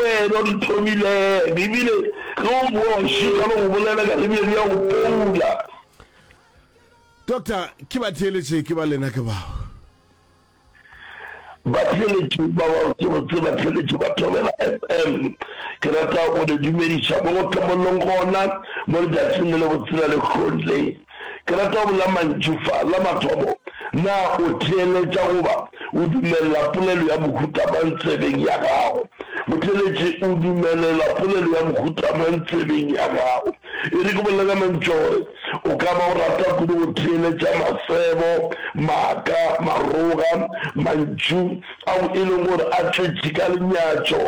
Wena o di thomile bibele ge o bowa o šitwa le go bolela ka bibele bja go poula. Doctor, ke ba theeletše ke ba lena ke bao. Ba theeletše ba bao ke go tseba theeletše ba Thobela FM. Ke rata go le dumediša mo go hlomollong gona mo letšatšing le le botsela le kgole. Ke rata go bolela mantšu fa. La mathomo, na o theeletša goba o dumelela polelo ya mohuta mang tsebeng ya gago? Motheeletši o dumelela polelo ya mohuta mang tsebeng ya gago? E re ke bolela ka mantšu a gore o ka ba o rata kudu go theeletša masebo, maaka, maroga, mantšu, ao e lego gore a tletše ka lenyatšo,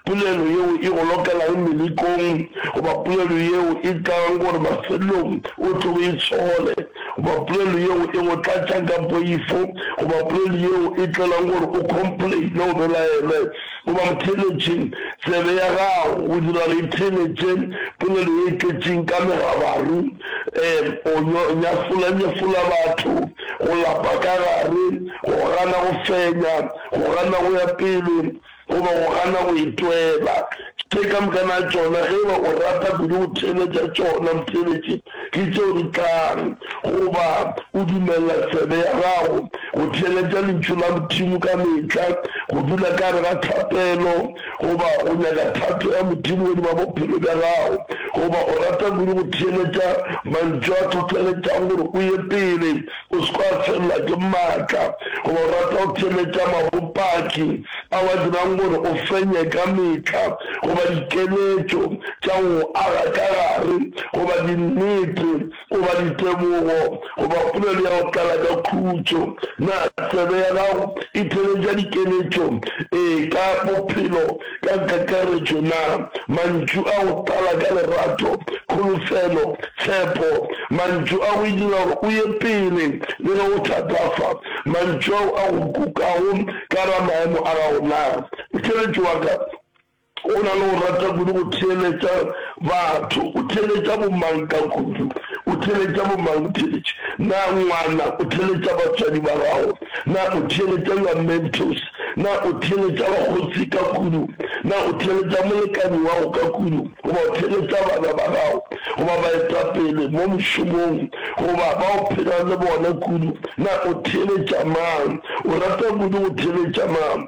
polelo yeo e go lokelago melekong, goba polelo yeo e tlago gore mafelelong o tlo e tšhole, goba polelo yeo e go tlatšang ka poifo, goba polelo yeo e tlelang gore o complaine o belaele, goba go theeletše tsebe ya gago go dira gore e theeletše polelo ye e tletšeng ka megabaru, um o nyafolanyafola batho. Go lapa ka gare, go gana go fenya, go gana go ya pele, goba go gana go itwela, tše ka moka na tšona, ge eba o rata kudu go theeletša tšona motheeletši, ke tšeo di tlang. Goba o dumelela tsebe ya gago go theeletša Lentšu la Modimo ka mehla, go dula ka gare ga thapelo, Goba o nyaka thato ya Modimo godima bophelo bja gago? Goba o rata kudu go theeletša mantšu a hlohleletšago gore o ye pele, o se ke wa felelwa ke maatla? Goba o rata go theeletša mabopaki ao a dirang gore o fenye ka mehla? Goba dikeletšo tša go aga ka gare? Goba dinnete goba ditebogo, goba polelo ya go tlala ka khutšo. Na tsebe ya gago e theeletša dikeletšo e ka bophelo ka kakaretšo? Na mantšu a go tlala ka lerato, kholofelo, tshepo, mantšu a go e dira gore o ye pele le ge go thatafa, mantšu ao a go kukago ka ga maemo a gago, na motheeletši wa ka O na le go rata kudu go theeletša batho. O theeletša bomang ka kudu? O theeletša bomang botheeletši? Na ngwana o theeletša batswadi ba gago? Na o theeletša your mentors? Na o theeletša bakgotsi ka kudu? Na o theeletša molekani wa go ka kudu? Goba o theeletša bana ba gago, goba baetapele mo mošomong, goba ba o phelang le bona kudu? Na o theeletša mang? O rata kudu go theeletša mang?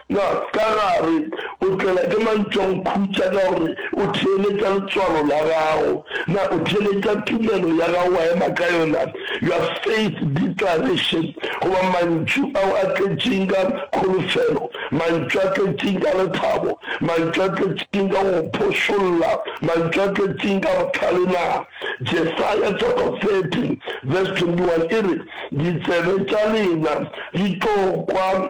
Ga ka ga re o tlelwa ke mantšwankhutša ka gore o theeletša letswalo la gago, na o theeletša tumelo ya gago wa ema ka yona, your faith declaration, goba mantšu ao a tletšeng ka kholofelo, mantšu a tletšeng ka lethabo, mantšu a tletšeng ka go phošolla, mantšu a tletšeng ka bohlale? Na Jesaya chapter 30 verse 21 e re, Ditsebe tša lena di tlo kwa,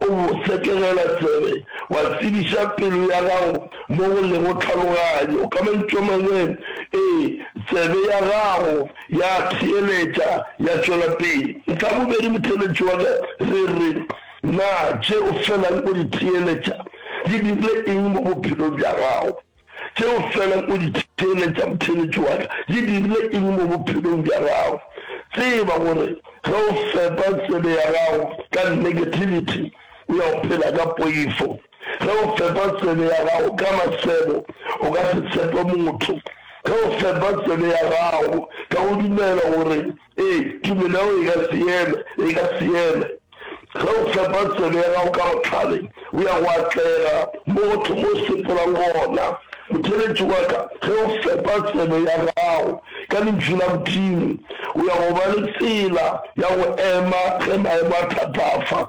O setegela tsebe, wa tsebiša pelo ya gago mo go lego tlhaloganyo. Ka mantšu a mangwe, ee, tsebe ya gago ya theeletša, ya tšwela pele. Ntlha ya bobedi, motheeletši wa ka, re re, Na tše o felang o di theeletša di dirile eng mo bophelong bja gago? Tšeo fela o di theeletšago theeletšo wa ka di dirile eng mo bophelong bja gago? Tseba gore ge o fepa tsebe ya gago ka negativity, o ya go phela ka poifo. Ge o fepa tsebe ya gago ka masego, o ka se tshepe motho. Ge o fepa tsebe ya gago ka go dumela gore Ee, tumelo ya gago e ka seeme, e ka seeme. Ge o fepa tsebe ya gago ka bohlale, o ya go atlega mo go thoma o sepolang gona. Motheeletši wa ka, ge o fepa tsebe ya gago ka Lentšu la Modimo, o ya go ba le tsela ya go ema ge maemo a thatafa.